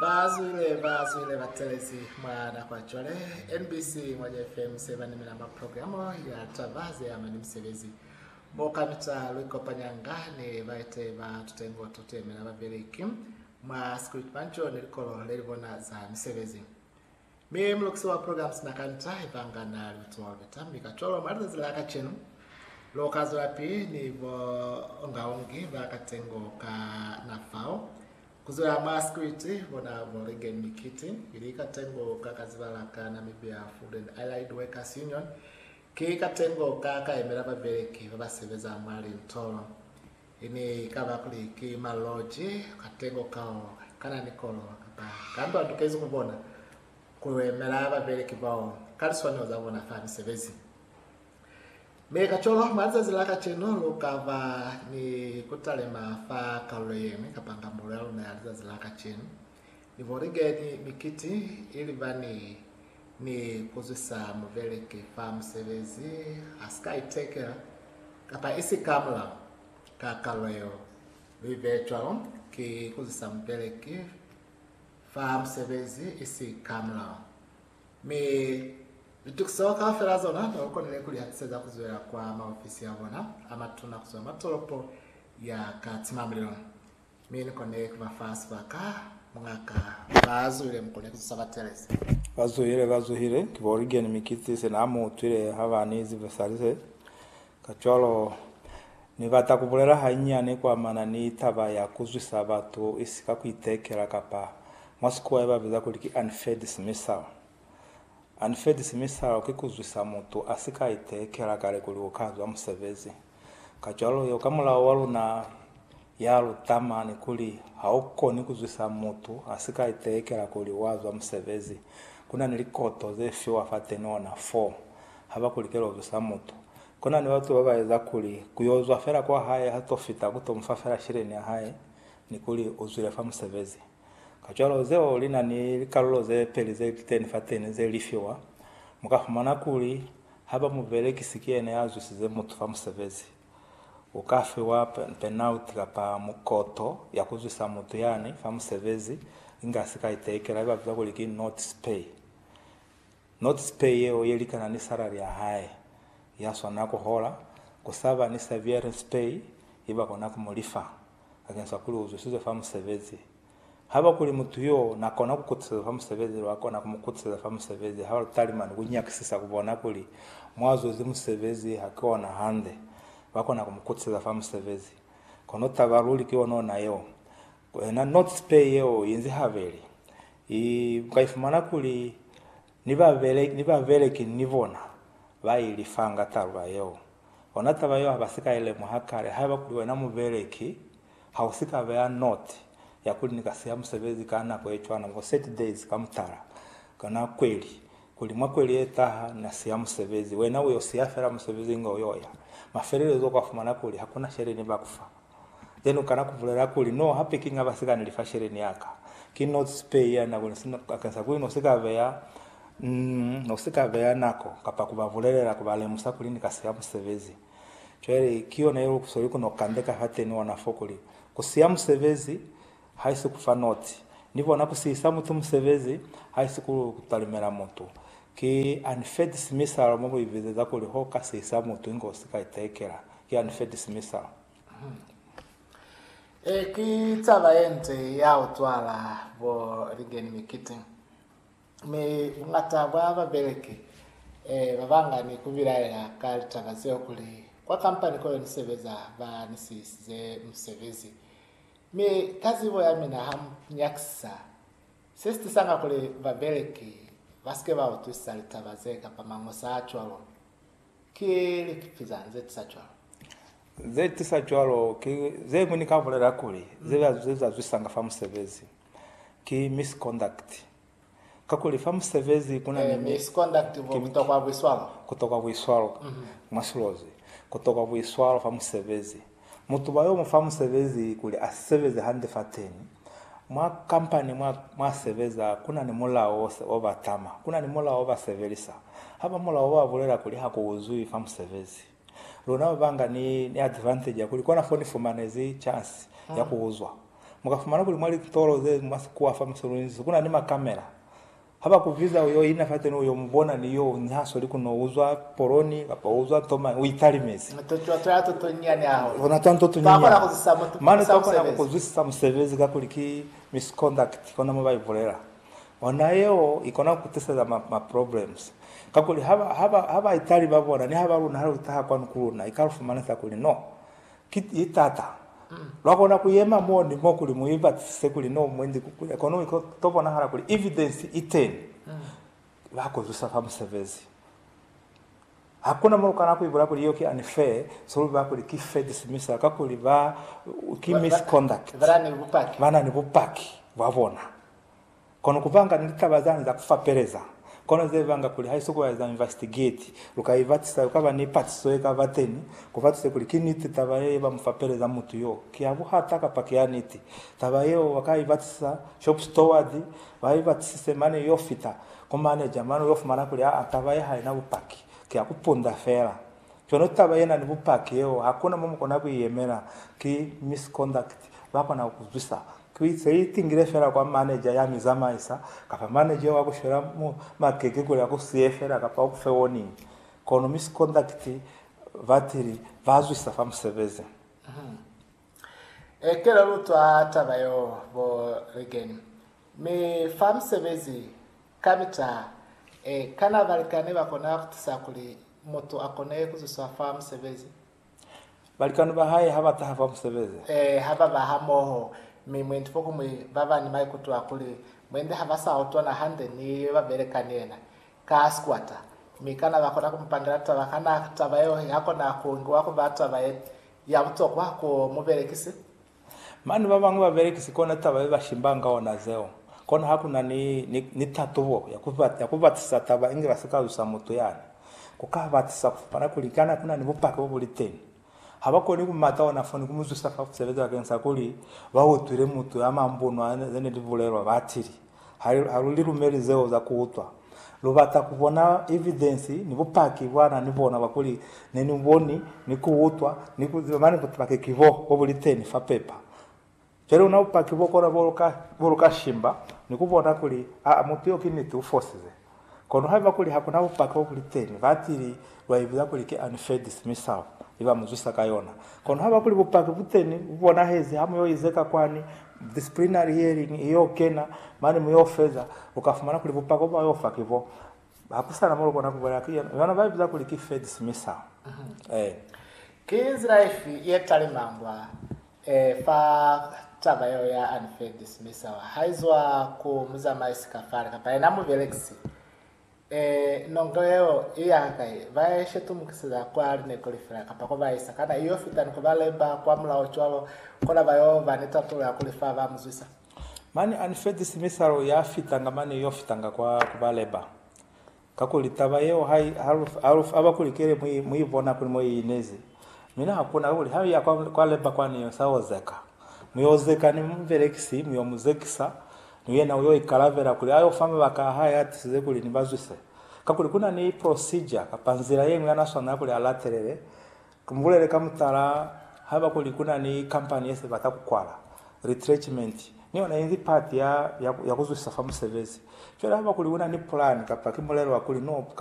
Ba zwile ba zwile ba telezi mwa nako ya cwale. NBC Ngwanya FM se ba nimela mwa programo ya taba ze ama ni misebezi, mo kamita lu ikopanyanga ni baeteyi ba tutengo to tu yemela babeleki mwa sikuli, kibanco ni likolo le li bona za misebezi. Mi mulukisi wa program sina ka nta ibanga na li kutualubeta, mi kacwalo mwa lizazi la kacenu lu ka zwelapili ni buongaongi ba katengo ka na fao, kuzwela mwa sikiliti bona bo Reagan Mikiti, ili katengo ka ka zibala ka Namibia Food and Allied Workers Union, ki katengo ka ka yemela babeleki ba ba sebeza mwa lintolo. I ne i ka ba kuli ki maloji katengo kao kana ni kolo kapa kambi wa tukezi ku bona ku yemela babeleki bao ka liswanelo za bona fa misebezi. Mi kacwalo, mwa lizazi la kacenu lu ka ba ni ku talima fa kalulo ye ñwi kapa ngambulo ya luna ya lizazi la kacenu. Ni bolige ni mikiti ili bani ni kuzwisa mubeleki fa musebezi a si ka itekela kapa isi ka mulao. Ka kalo yeo, lu ibeye cwalo ki kuzwisa mubeleki fa musebezi isi ka mulao. Mi litukiso kaufela zona ne lu konile ku li hatiseza ku zwela kwa maofisi a bona a matuna kuzwa mwa tolopo ya Katimamulilo. Mi ni kone ku ba fa sibaka, mungaka, ba zuhile mu kone ku zusa ba Teresa. Ba zuhile, ba zuhile. Ki bo Regan mi ki se na mu utwile ha ba ni zivesali ze. Kacwalo, Ni bata ku bulela hanyiani kwa mana ni taba ya ku zwisa batu isika ku itekela, kapa, mwa Sikuwa ye ba biza kuli ki unfair dismissal. Unfair dismissal ki ku zwisa mutu a si ka itekela kale kuli u ka zwa musebezi. Kacwalo yo ka mulao wa luna ya luta mani kuli ha u koni ku zwisa mutu a si ka itelekela kuli wa zwa musebezi. Ku na ni likoto ze fiwa fa tenona fo ha ba ku likela ku zwisa mutu. Ku na ni batu ba ba eza kuli ku yo zwa fela kwa hae ha to fita ku to mu fa fela sheleni ya hae ni kuli u zwile fa musebezi. Kacwalo zeo li na ni likalulo ze peli ze li teni fateni ze li fiwa. Mu ka fumana kuli, haiba mubelekisi ki yena ya zwisize mutu fa musebezi, u ka fiwa penalti kapa mukoto ya ku zwisa mutu yani fa musebezi, inga sika itekela ye ba biza kuli ki notice pay. Notice pay yeo ye likana ni salari ya hae ya swanela ku hola, ku sa ba ni severance pay ye ba kona ku mu lifa. bakeng sa kuli uzwisizwe fa musebezi. Haba kuli mutu yo na kona ku kutisezwa fa musebezi, lwa kona ku mu kutiseza fa musebezi ha lu talimani ku nyakisisa ku bona kuli mwa zwezi musebezi ha ki ona hande. Ba kona ku mu kutiseza fa musebezi. Kono taba luli ki ona ona yeo. Ku ena, notes pay yeo inzi habeli. I, u ka ifumana kuli Ni ba, ni babeleki ni bona ba i lifanga taluba yeo. Ona taba yeo ha ba si ka i lemuha kale. Haiba kuli wena mubeleki, ha u si ka beya note ya kuli ni ka siha musebezi ka nako ye cwana, for thirty days ka mutala, kana kweli, kuli mwa kweli ye taha na siha musebezi. Wena u yo siha fela musebezi inge u yo ya. Mafelelezo u ka fumana kuli ha ku na sheleni ba ku fa. Then u kana ku bulela kuli, No, hape ki nga ba sika ni lifa sheleni ya ka. Ki no sipe ya nako ni sina bakeng sa kuli no si ka beya, mm, no si ka beya nako kapa ku ba bulelela, ku ba lemusa kuli ni ka siya musebezi. Cwale ki yona ye lu sweli ku no kandeka fateni ona fo kuli, Ku siya musebezi, haisi ku fa nootshi ni bona ku sihisa mutu musebezi, haisi ku talimela mutu. Ki unfed simisalo mo bo i bizeza kuli ho ka sihisa mutu inge u si ka itekela. Ki unfed simisalo. Ee, ki taba ye nde ya u cwala bo ligeni mikiti. Mi buñata bwa babeleki ee ba banga ni ku bilaela ka litaba zeo kuli, Kwa kampani koyo ni sebeza ba ni sihisize musebezi. Mi ka zibo ya mina ha mu nyakisisa, se si tisanga kuli babeleki ba si ke ba utwisisa litaba ze kapa mañosa a cwalo. Ki likipi zañi ze tisa cwalo? Ze tisa cwalo ki ze ñwi ni ka bulela kuli ze zazwisanga fa musebezi, ki misconduct. Kakuli fa musebezi ku na ni mi, ku tokwa buiswalo. Mwa silozi, ku tokwa buiswalo fa musebezi. Mutu ba yo mu fa musebezi kuli a sebeze hande fateni. Mwa kampani mwa, mwa sebeza, ku na ni mulao o ba tama. Ku na ni mulao o ba sebelisa. Ha ba mulao o ba bulela kuli ha ku uzwi fa musebezi. Luna babanga ni ni advantage ya kuli kona fo ni fumanezi chance ya ku uzwa. Mu ka fumana kuli mwa litolo ze mwa sikuwa fa Musulunisi kuna ni makamela. Ha ba ku biza u yo ina fateni u yo mu bona ni yo ni ha sweli ku no uzwa poloni kapa u uzwa nto mañi, u italimezi. Mane twa twa nto to nyinyani hahulu. Luna twa nto to nyinyani. Twa kona ku zwisa mutu, ku zwisa musebezi. Mane twa kona ku ku zwisa musebezi kakuli ki misconduct kona mo ba ibulela. Ona yeo ikona kutiseza ma ma problems kakuli haba haba haba itali babona ni haba luna hali utaha kwanu kuluna ikalufumanisa kuli no ki itata lwakona kuyema mo ni mo kuli muibatisise kuli no mwendi kukunya kono iko tobonahala kuli evidence iteni bakuzwisa fa musebezi hakuna mo lukana kuibula kuli iyo ki unfair solubi bakuli ki fair dismissal kakuli ba ki misconduct banani bupaki bwabona Kono kuvanga ni litaba zani za kufapeleza, kono zevanga kuli haiso kueza investigate, luka ibatisa, kukaba ni patiso yekaba teni, kubatise kuli ki niti taba ye yeba mufapeleza mutu yo ki ya buhata kapa ki ya niti. Taba yeo baka ibatisa shop steward, ba ibatisise mane yo fita ku manager, mane uyo fumana kuli aa taba ye haina bupaki, ki ya kupunda fela. Kono taba yena ni bupaki yeo hakuna mo mukona kuiyemela, ki misconduct, bakona kukuzwisa Ki ze itingile fela kwa maneja ya mi zamaisa, kapa maneja wa ku shwela mu makeke kuli a ku siye fela kapa u ku fe warning. Kono misikondakiti batili ba zwisa fa musebezi. Ee, kela lu utwa taba yeo, bo Regan. Mi fa musebezi, kamita, ee, kana balikani ba kona ku tusa kuli mutu a kone ku zwiswa fa musebezi? Balikani ba hae ha ba taha fa musebezi. Ee, ha ba ba hamoho. Mi mwendi fokumwi ba ba ni maikuto a kuli mwendi ha ba sa utwana hande ni yo ba beleka ni yena, ka sikwata. Mi kana ba kona ku mu pangela taba? Kana taba yeo ya kona ku ngiwa ku ba taba ye, ya butokwa ku mubelekisi? Mane babañwi ba belekisi kona taba ye ba shimbanga ka ona zeo. Kona ha ku na ni, ni, ni tatubo ya ku, ya ku batisisa taba inge ba si ka zwisa mutu yani. Ku ka batisisa ku fapana kuli kana ku na ni bupaki bo bu li teni. Ha ba koni ku mata ona fo ni ku mu zwisa fa ku sebeza bakeng sa kuli ba utwile mutu ya mambunwa ze ne li bulelwa, ba tili. Ha lu li lumeli zeo za ku utwa, lu bata ku bona evidensi ni bupaki bwa na ni bona bwa kuli ne ni boni, ni ku utwa, ni ku ziba. Mane bupaki ki bo, bo bu li teni fa pepa. Cwale ona bupaki bo kona bo lu ka shimba ni ku bona kuli, aa, mutu yo ki niti, u fosize. Kono haiba kuli hakuna bupaki bo buli teni, batili lwa ibiza kuli ki Anifedisi mi sao li ba mu zwisa ka yona. Kono haiba kuli bupaki bu teni, bu bonahezi, ha mu yo izeka kwani disciplinary hearing i yo kena, mane mu yo feza, lu ka fumana kuli bupaki bo ba yo fa ki bo. Ha ku sa na mo lu kona ku bulela ki yona ba ibiza kuli ki Fedisi mi sao. Ee. Ki nzila ifi ye talimangwa Ee, fa taba yeo ya unfair dismissal haizwa ku muzamaisi kafale kapa yena mubelekisi, ee, nongo yeo i ya hakai, ba ya ishetumukiseza kwa lineko lifela kapa ko ba isa, kana i yo fita ni ku ba lemba kwa mulao cwalo kona ba yo ba ni tatulo ya kuli fa ba mu zwisa? Mane unfair dismissal ya fitanga mane i yo fitanga kwa ku ba lemba. Kakuli taba yeo ha i aba kuli kele mu i bona kuli mo i inezi. Mi na hakuna kakuli ha mu ya kwa leba kwani yo sa ozeka. Mu yo zeka ni mubelekisi, mu yo mu zekisa, ni yena u yo ikalabela kuli a yo fa mabaka a hae a tisize kuli ni ba zwise. Kakuli ku na ni procedure kapa nzila ye ñwi ya na swanela kuli a latelele Ki bulele ka mutala haiba kuli ku na ni kampani ye se bata ku kwala, retrenchment ni yona inzi pati ya, ya, ya ku zwisa fa musebezi. Cwale haiba kuli u na ni pulani kapa ki mulelo wa kuli no